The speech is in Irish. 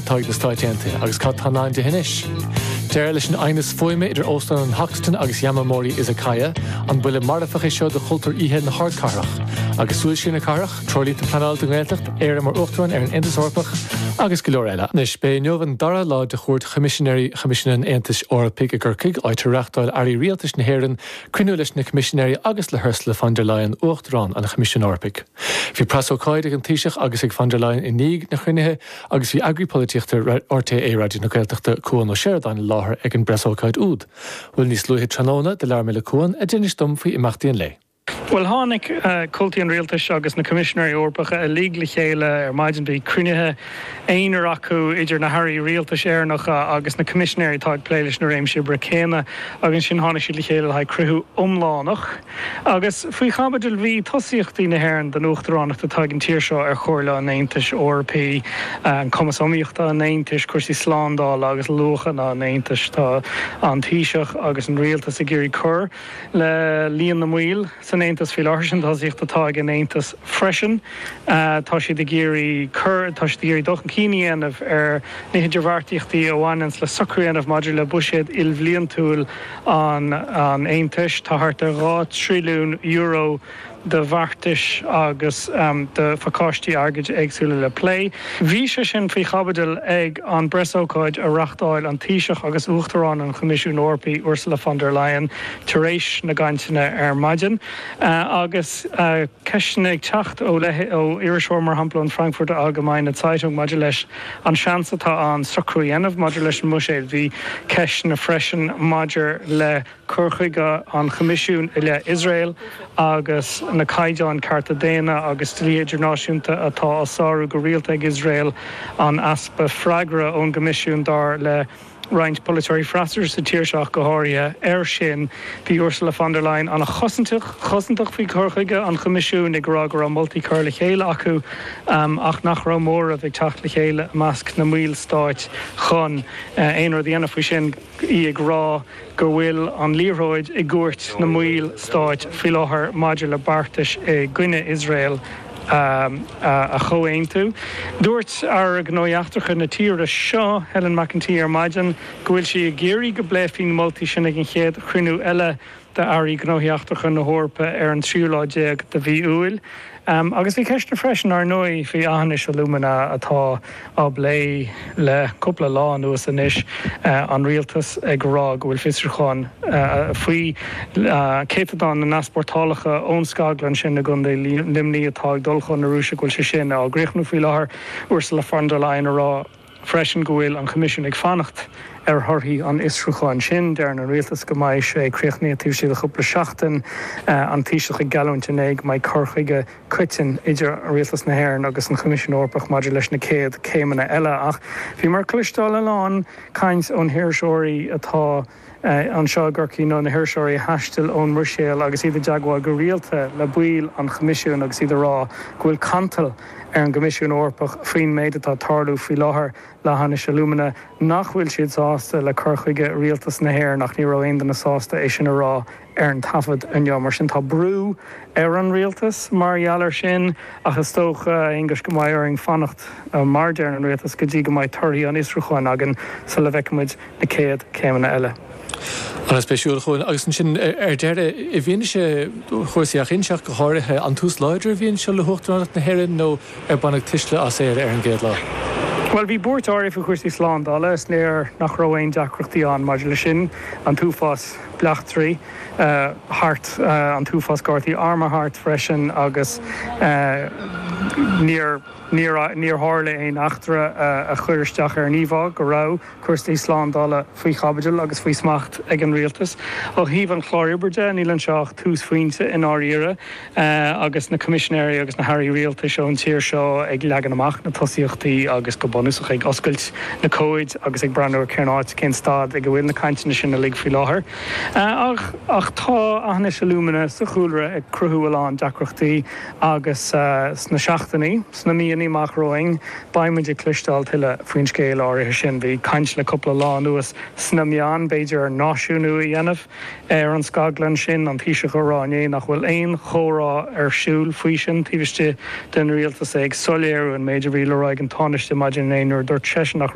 táirgí na Stáit Aontaithe, agus cad atá i ndán di anois? Deireadh leis an aighneas fuaime idir Óstán an Hoxton agus Yamamori Izakaya, an buille marfach é seo do chultúr oíche na hardchathrach? Agus súil siar na cathrach, treoirlínte pleanála don nGaeltacht, Éire mar Uachtarán ar an Aontas Eorpach, agus go leor eile. Anois, b'é inniu an dara lá de chuairt Choimisinéirí Choimisiún an Aontais Eorpaigh i gCorcaigh, áit ar reáchtáil Airí Rialtais na hÉireann cruinniú leis na Coimisinéirí agus le hUrsula von der Leyen, Uachtarán an Choimisiúin Eorpaigh. Bhí preasócáid ag an Taoiseach agus ag von der Leyen i ndiaidh na cruinnithe, Agus bhí Eagraí Polaitíochta RTÉ Raidió na Gaeltachta, Cuan Ó Seireadáin i láthair ag an bpreasócáid úd. Bhuel, níos luaithe tráthnóna, do labhair mé le Cuan, a d'inis dom faoi imeachtaí an lae. Bhuel, tháinig comhaltaí an Rialtais agus na Coimisinéirí Eorpacha uilig le chéile ar maidin. Bhí cruinnithe aonair acu idir na hAirí Rialtais Éireannacha agus na Coimisinéirí atá ag plé leis na réimsí oibre céanna. Agus ansin tháinig siad le chéile le haghaidh cruinniú iomlánach. Agus faoi chaibidil bhí tosaíochtaí na hÉireann don Uachtaránacht atá ag an tír seo ar Chomhairle an Aontais Eorpaigh, an cumas iomaíochta an Aontais, cúrsaí slándála agus luachanna an Aontais. Tá an Taoiseach agus an Rialtas ag iarraidh cur le líon na mball san Aontas faoi láthair, sin tosaíocht atá ag an Aontas freisin. Tá siad ag iarraidh cur, tá siad ag iarraidh dul chun cinn a dhéanamh ar na hidirbheartaíochtaí a bhaineanns le socrú a dhéanamh maidir le buiséad ilbhliantúil, an an Aontais. Tá thart ar €2 trilliún de bheartais agus de phacáistí airgid éagsúla le plé. Bhí sé sin faoi chaibidil ag an bpreasócáid a reáchtáil an Taoiseach agus Uachtarán an Choimisiúin Eorpaigh, Ursula von der Leyen, tar éis na gcainteanna ar maidin. Agus ceisteanna ag teacht ó iriseoirí, mar shampla an Frankfurter Allgemeine Zeitung, maidir leis, An seans atá ann socrú a dhéanamh maidir leis an mbuiséad. Bhí ceisteanna freisin maidir le cur chuige an Choimisiúin i leith Iosrael agus na caighdeáin cearta daonna agus dlí idirnáisiúnta atá á sárú go rialta ag Iosrael, an easpa freagra ón gCoimisiún dar le. roinnt polaiteoirí freasúra sa tír seo ach go háirithe. Air sin, bhí Ursula von der Leyen an-chosantach, chosantach faoi chur chuige an Choimisiúin, ag rá go raibh moltaí curtha le chéile acu ach nach raibh móramh ag teacht le chéile i measc na mballstáit chun aon rud a dhéanamh faoi sin, í ag rá go bhfuil an liathróid i gcúirt na mballstáit faoi láthair maidir le beartais i gcoinne Iosrael. a chomhaontú. Dúirt Aire Gnóthaí Eachtracha na tíre seo, Helen McEntee, ar maidin go bhfuil sí ag iarraidh go bpléifí na moltaí sin ag an chéad chruinniú eile d'Airí Gnóthaí Eachtracha na hEorpa ar an 13ú lá de mhí Iúil. Agus bhí ceisteanna freisin, ar ndóigh, faoi Aughinish Alumina atá. á bplé le cúpla lá anuas anois, an Rialtas ag rá go bhfuil fiosrúchán faoi chéatadán na n-easpórtálacha ón scaglann sin i gContae Luimnigh atá ag dul chun na Rúise, go bhfuil sé sin á chríochnú faoi láthair. Ursula von der Leyen a rá freisin go bhfuil an Coimisiún ag fanacht ar thorthaí an fhiosrúcháin sin. Deireann an Rialtas go mbeidh sé críochnaithe taobh istigh de chúpla seachtain. An Taoiseach ag geallúint inné go mbeidh cur chuige. coiteann idir Rialtas na hÉireann agus an Choimisiún Eorpach maidir leis na céad céimeanna eile, ach bhíomar ag cloisteáil a lán caint ó na hiriseoirí atá anseo i gCorcaigh nó na hiriseoirí a thaistil ón mBruiséil agus iad i dteagmháil go rialta le baill an Choimisiúin agus iad ag rá go bhfuil cantal ar an gCoimisiún Eorpach faoin méid atá ag tarlú faoi láthair le hAughinish Alumina, nach bhfuil siad sásta le cur chuige Rialtas na hÉireann ach ní raibh aon duine sásta é sin a rá ar an taifead inniu. Mar sin, tá brú ar an rialtas mar gheall air sin, ach is dócha, a Aonghuis, go mbeidh orainn fanacht, mar a deir an rialtas, go dtí go mbeidh torthaí an fhiosrúcháin againn sula bhfeicfidh muid na céad chéimeanna eile. An-spéisiúil go deo. Agus ansin, ar deireadh, i bhfianaise chúrsaí Aughinish go háirithe, an tús láidir é a bhí anseo le hUachtaránacht na hÉireann nó ar baineadh tuisle as Éire ar an gcéad lá? Bhuel, bhí buairt áirithe faoi chúrsaí slándála, is léir nach raibh aon deacrachtaí ann maidir leis sin, an t-uafás. bleachtairí thart, an t-uafás gardaí armtha thart freisin agus níor tharla aon eachtra a chuir isteach ar an íomhá go raibh cúrsaí slándála faoi chaibidil agus faoi smacht ag an rialtas. Ó thaobh an chláir oibre de, níl anseo ach túsphointe i ndáiríre. agus na Coimisinéirí agus na hAirí Rialtais ón tír seo ag leagan amach na tosaíochtaí agus go bunúsach ag oscailt na comhaid agus ag breathnú ar cén áit, cén staid ag a bhfuil na cainteanna sin uilig faoi láthair. Ach tá Aughinish Alumina sa chúlra ag cruthú a lán deacrachtaí agus sna seachtainí, sna míonna amach romhainn beidh muid ag cloisteáil tuilleadh faoin scéal áirithe sin. Bhí caint le cúpla lá anuas sna meáin b'fhéidir náisiúnú a dhéanamh. Ar an scaglann sin, an Taoiseach a rá inné nach bhfuil aon chomhrá ar siúl faoi sin taobh istigh den Rialtas, é ag soiléiriú an méid a bhí le rá ag an Tánaiste maidin inné nuair a dúirt seisean nach